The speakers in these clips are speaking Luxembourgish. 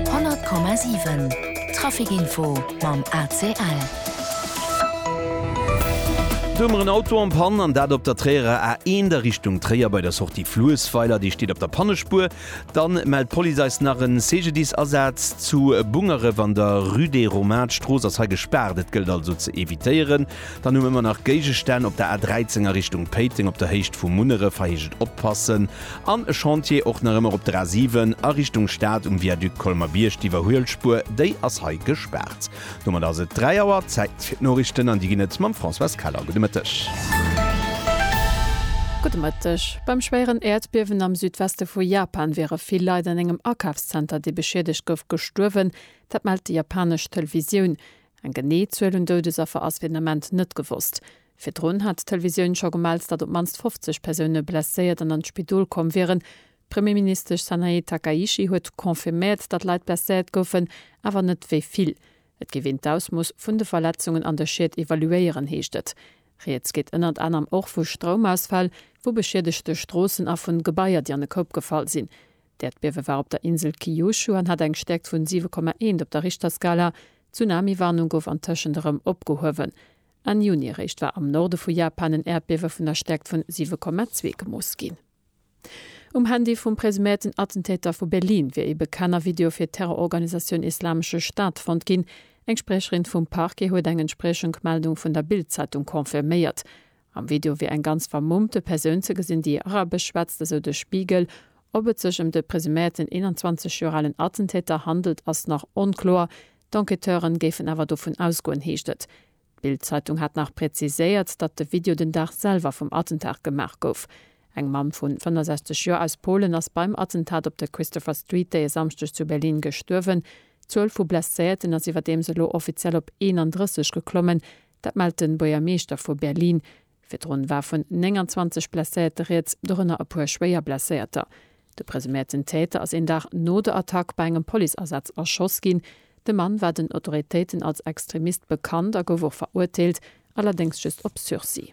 100,7 Trafic-Info mam ACL. Domer en Auto am Pann an dat op der Tréierer A1 a Richtung Tréier bei der Sortie Fluessweiler. Dee steet op der Pannespuer. Dann mellt d'Police eis nach en CGDIS-Asaz zu Bungeref an der Rue des Romains. D'Strooss ass hei gespaart, et gëllt also ze evitéieren. Dann hu mir ëmmer nach Géigestänn op der A13 a Richtung Péiteng op der Héicht vu Munneref, hei heescht et oppassen, an e Chantier och nach ëmmer op der A7 a Richtung Stad um Viaduc Colmer-Bierg. D'Iwwerhuelspuer, déi ass hei gespaart. Domat ass et 3 Auer, Zäit fir d'Norichten an déi ginn et mam Françoise Keller. Gudde Mëtteg. Gudde Mëtteg. Beim schwéieren Äerdbiewen am Südweste vu Japan wiere vill Leit an engem Akafszenter, dee beschiedegt gouf, gestuerwen. Dat mellt déi japanesch Televisioun. Eng genee Zuel un Doudesaffer ass fir den Ament net gewosst. Virdrun hat d'Televisioun scho gemellt, datt op d'mannst 50 Persoune blesséiert an an d'Spidol komm wieren. D'Premierministesch Sanae Takaichi huet confirméiert, datt Leit blesséiert goufen, awer net wéi vill. Et géif een d'Ausmooss vun de Verletzungen an de Schied evaluéieren, heescht et. Rieds geet ënnert anerem och vu Stroumausfäll, vu beschiedegte Stroossen a vun Gebaier, déi an e Koup gefall sinn. D'Äerdbiewe war op der Insel Kyushu an hat eng Stäerkt vun 7,1 op der Richterskala. D'Tsunami-Warnung gouf antëschent erëm opgehuewen. Enn Juni eréischt war am Norde vu Japan en Äerdbiewe vun der Stäerkt vun 7,2 gemooss ginn. Um Handy vum presuméierten Attentäter vu Berlin wier ee Bekenner Video fir d'Terrororganisatioun Islamesche Staat fonnt ginn. Eng Spriecherin vum Parquet huet eng entspriecheng Meldung vun der Bild-Zeitung confirméiert. Am Video wier eng ganz vermummte Persoun ze gesinn, déi Arabesch schwätzt, esou de Spiegel. Ob et sech ëm de presuméierten 21 Joer alen Attentäter handelt, ass nach onkloer. D'Enquêteuren géifen awer dovun ausgoen, heescht et. D'Bild-Zeitung hat nach präziséiert, datt de Video den Dag selwer vum Attentat gemaach gouf. Eng Mamm vun 65 Joer aus Polen ass beim Attentat op der Christopher Street dee Samschdeg zu Berlin gestuerwen. D'Zuel vu Blesséierten ass iwwerdeems elo offiziell op 31 geklommen. Dat mellt de Buergermeeschter vu Berlin. Virdrun war vun 29 Blesséierte rieds, dorënner e puer schwéier Blesséierter. De presuméierten Täter ass een Dag no der Attack bei engem Policeasaz erschoss ginn. De Mann war den Autoritéiten als Extremist bekannt a gouf och verurteelt, allerdéngs just op Sursis.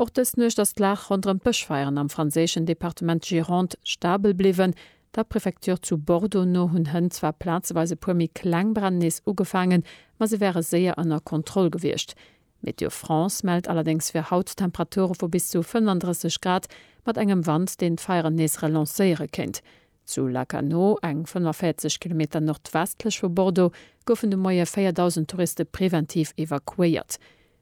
Och dës Nuecht ass d'Lag ronderëm d'Bëschfeieren am franséischen Departement Gironde stabel bliwwen. Der Prefecture zu Bordeaux no hunn Hënn zwar plazeweis e puer méi kleng Bränn nees ugefaangen, ma se wäre séier ënner Kontroll gewiescht. Météo France mellt allerdéngs fir haut Temperature vu bis zu 35 Grad mat engem Wand, deen d'Feieren nees relancéiere kéint. Zu Lacanau, eng 45 Kilometer nordwestlech vu Bordeaux, goufen de Moie 4.000 Touriste preventiv evakuéiert.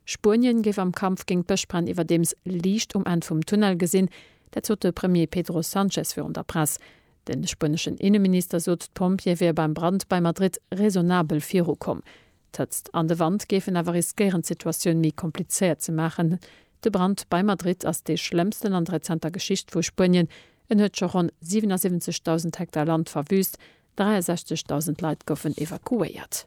Spuenien géif am Kampf géint d'Bëschbränn iwwerdeems Liicht um Enn vum Tunnel gesinn. Dat sot de Premier Pedro Sanchez virun der Press. De spueneschen Inneminister sot, d'Pompjeeë wiere beim Brand bei Madrid raisonnabel virukomm. D'Hëtzt an de Wand géifen awer riskéieren d'Situatioun méi komplizéiert ze maachen. De Brand bei Madrid ass dee schlëmmsten an der rezenter Geschicht vu Spuenien. En huet scho ronn 77.000 Hektar Land verwüüst, 63.000 Leit goufen evakuéiert.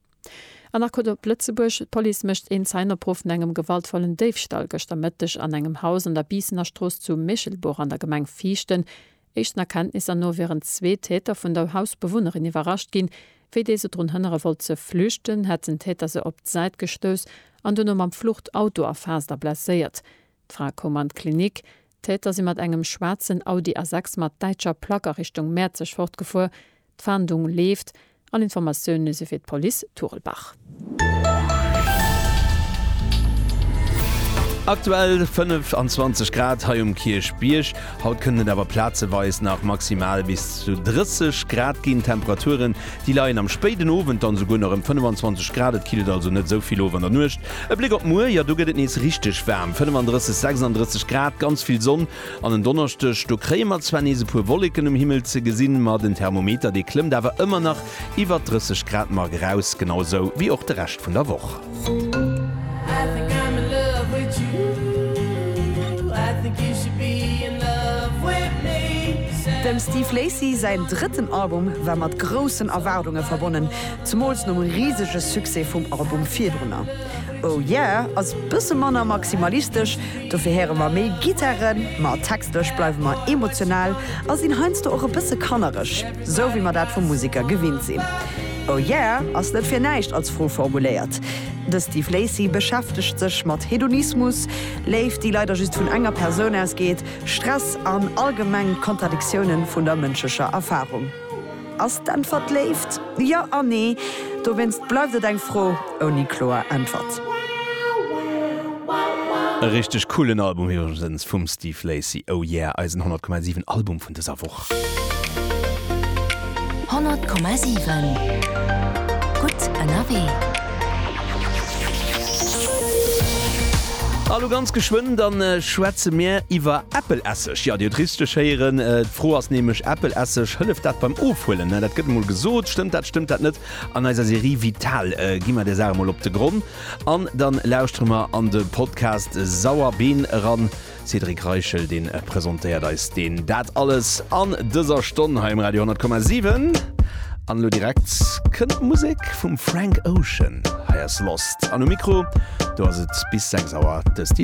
An nach gutt op Lëtzebuerg, D'Police mécht een Zäinopruff vun engem gewaltvollen Déifstall gëschter Mëtteg an engem Haus an der Biissener Strooss zu Méchelbuch an der Gemeng Viichten. Éischten Erkenntnisser no wieren zwee Täter vun der Hausbewunnerin iwwerrascht ginn. Wéi déi se drun hënnere wollt ze flüchten, hätt den Täter se op d'Säit gestouss an duerno mam Fluchtauto erfaasst a blesséiert. D'Fra koum an d'Klinik. D'Täter si mat engem schwaarzen Audi A6 mat däitscher Plack a Richtung Mäerzeg fortgefuer. D'Fahndung leeft. All Informatioune si fir d'Police Turelbach. Aktuell 25 Grad hei um Kierchbierg. Haut kënnt et awer plazeweis nach maximal bis zu 30 Grad ginn. D'Temperature Déi leien am spéiden Owend dann esouguer nach ëm 25 Grad, et killt also net esou vill of an der Nuecht. E Bléck op muer, jo do gëtt et nees richteg waarm, 35, 36 Grad, ganz vill Sonn an en Donneschdeg do kréie mer zwar nees e puer Wolleken um Himmel ze gesinn, ma den Thermometer dee klëmmt awer ëmmer nach iwwert 30 Grad mark eraus, genau esou wéi och de Rescht vun der Woch. Dem Steve Lacy säin drëtten Album war mat groussen Erwaardunge verbonnen, zemools nom risege Succès vum Album virdrunner. Oh Yeah ass bësse manner maximalistesch, dofir héiere mer méi Gittaren, ma textlech bleiwe mer emotional a sinn heiansdo och e bësse kannereg. Sou wéi mer dat vu Museker gewinnt sinn. Oh yeah ass net fir näischt als Fro formuléiert. De Steve Lacy beschäftegt sech mat Hedonismus, Léift déi leider just vun enger Persoun ausgeet, Stress an allgemeng d'Kontradiktiounen vun der mënschlecher Erfarung. Ass d'Äntwert Léift? Jo an Nee. Dowéinst bleift et eng Fro ouni kloer Äntwert. E richteg coolen Album iwwregens vum Steve Lacy. Oh yeah, eisen 100,7 Album vun. an dëser Woch. 100,7 Gutt ënnerwee. A lo ganz geschwënn, da schwätze mir iwwer Äppelesseg. Jo, Dir hutt richteg héieren, d'Fro ass nämlech, Äppelesseg, hëlleft dat beim Ofhuelen? Dat gëtt emol gesot. Stëmmt dat, stëmmt dat net? An eiser Serie Vital gi mer där Saach emol op de Gronn an da lauschtere mer an de Podcast Sauerbeen eran. Cédric Reichel deen presentéiert eis deen dat alles an dëser Stonn hei um Radio 10,7 an elo direkt kënnt d'Musek vum Frank Ocean. Hei ass Lost an um Mikro do ass et bis 6 Auer de Steve.